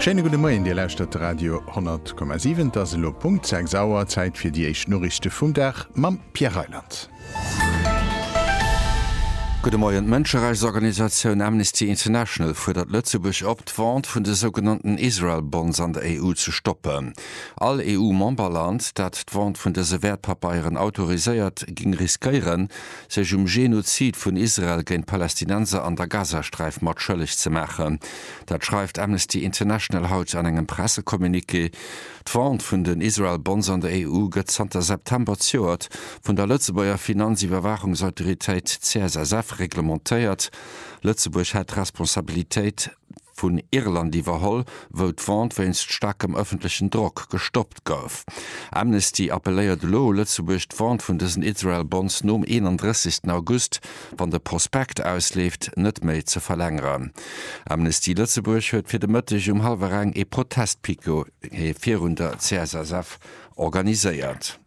Schéine gudde Moien, Dir lauschtert de Radio 10,7. Et ass elo Punkt 6 Auer, Zäit fir déi éischt Noriichte vum Dag mam Pierre Reyland. Gudde Moien, D'Mënscherechtsorganisatioun Amnesty International fuerdert Lëtzebuerg op, d'Vente vun de sougenannten Israel Bonds an der EU ze stoppen. All EU-Memberland, dat d'Vente vun dëse Wäertpapeieren autoriséiert, géing riskéieren, sech um Genozid vun Israel géint d'Palästinenser an der Gazasträif mat schëlleg ze maachen. Dat schreift Amnesty International haut an engem Pressecommuniqué. D'Vente vun den Israel Bonds an der EU gëtt zanter September d'Joert vun der Lëtzebuerger Finanziwwerwaachungsautoritéit CSSF reglementéiert. Lëtzebuerg hätt d'Responsabilitéit. vun Irland iwwerholl, wou d'Vente wéinst staarkem ëffentlechen Drock gestoppt gouf. Amnesty appelléiert elo u Lëtzebuerg, d'Vente vun dësen Israel Bonds nom 31. August, wann de Prospekt ausleeft, net méi ze verlängeren. Amnesty Lëtzebuerg huet fir de Mëtteg um hallwer eng ee Protestpiquet virun der CSSF organiséiert.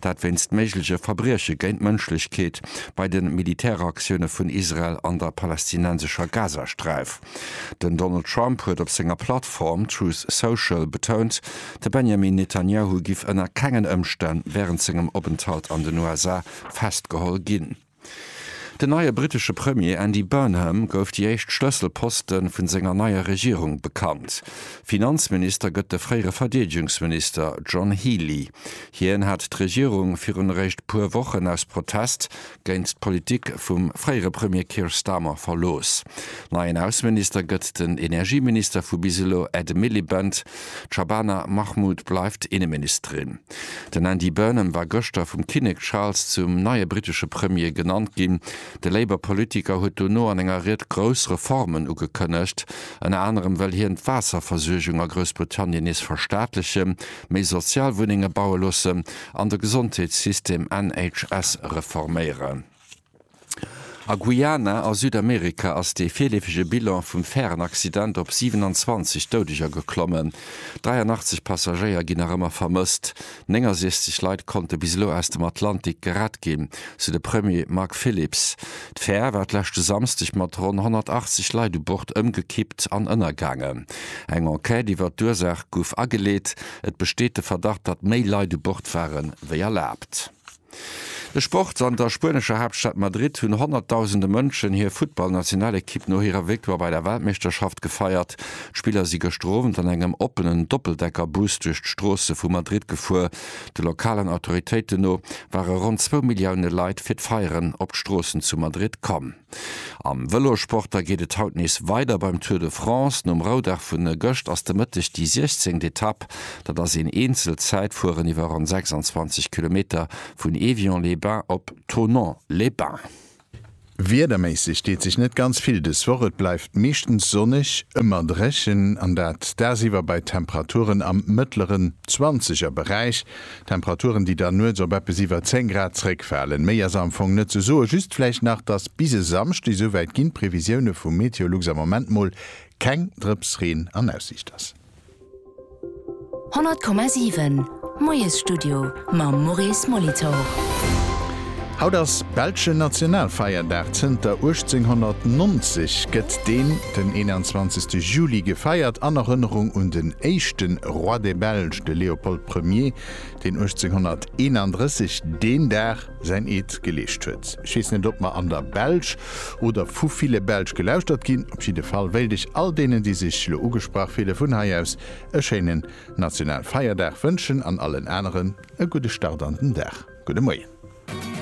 Dat wéinst méigleche Verbrieche géint d'Mënschlechkeet bei de Militäraktioune vun Israel an der palästinensescher Gazasträif. Den Donald Trump huet op senger Plattform Truth Social betount, de Benjamin Netanyahu giff ënner kengen Ëmstänn wärend sengem Openthalt an den USA festgeholl ginn. Den neie brittesche Premier Andy Burnham gouf déi éischt Schlësselposte vun senger neier Regierung bekannt. Finanzminister gëtt de fréiere Verdeedegungsminister John Healey. Hien hat d'Regierung virun eréischt puer Wochen aus Protest géint d'Politik vum fréiere Premier Keir Starmer verlooss. Neien Ausseminister gëtt den Energieminister vu bis elo Ed Miliband. D'Shabana Mahmood bleift Inneministerin. Den Andy Burnham war gëschter vum Kinnek Charles zum neie brittesche Premier genannt ginn. De Labour-Politiker huet dono an enger Ried grouss Reformen ugekënnegt. Ënner anerem wëll hien d'Waasserversuergung a Groussbritannien nees verstaatlechen, méi sozial Wunnenge baue loossen an de Gesondheetssystem, NHS, reforméieren. A Guyana a Südamerika ass dee virleefege Bilan vum Färenaccident op 27 Doudeger geklommen. 83 Passagéier ginn nach ëmmer vermësst. 69 Leit konnte bis elo aus dem Atlantik gerett ginn, sou de Premier Mark Phillips. D'Fär war d'leschte Samsdeg mat ronn 180 Leit u Bord ëmgekippt an ënnergaangen. Eng Enquête iwwer d'Ursaach gouf ageleet. Et besteet de Verdacht, datt méi Leit u Bord ware wéi erlaabt. De Sport, An der spuenescher Haaptstad Madrid hunn honnertdausende Mënschen hir Futtballnationalekipp no hirer Victoire bei der Weltmeeschterschaft gefeiert. D'Spiller si gëschter Owend an engem oppenen Doppeldeckerbus duerch d'Stroosse vu Madrid gefuer. De lokalen Autoritéiten no ware ronn zwou Millioune Leit fir d'Feieren op d'Stroossen zu Madrid komm. Am Vëlossport da geet et haut nees weider beim Tour de France. Nom Roudag vu gëscht ass de Mëtteg déi 16. Etapp. Dat ass een Eenzelzäitfueren iwwer ronn 26 Kilometer vun Évian-les-Bains op Thonon-les-Bains. Wiederméisseg deet sech net ganz vill dës Woch. Et bleift meeschtens sonneg, ëmmer dréchen an dat dagsiwwer bei Temperaturen am mëttleren Zwanzegerberäich. Temperaturen, déi dann nuets op eppes iwwer 10 Grad zréckfalen. Méi ass am Fong net ze soen, just vläicht nach, dass bis e Samschde, esouwäit ginn d'Previsioune vu Meteolux am Moment mol, keng Drëps Reen an Aussiicht ass. 100,7 Moiesstudio mam Maurice Molitor. Haut ass belschen Nationalfeierdag. Zënter 1890 gëtt deen den 21 Juli gefeiert an Erënnerung un den éischten Roi des Belges, de Léopold Premier, deen 1831 deen Dag säin Eed geleescht huet. Ech weess net, ob mer an der Belsch oder vu ville Belsch gelauschtert ginn. Op jidde Fall wéilt ech all deenen, déi sech elo ugesprach fille vun hei aus e schéinen Nationalfeierdag wënschen an allen aneren e gudde Start an den Dag. Gudde Moien.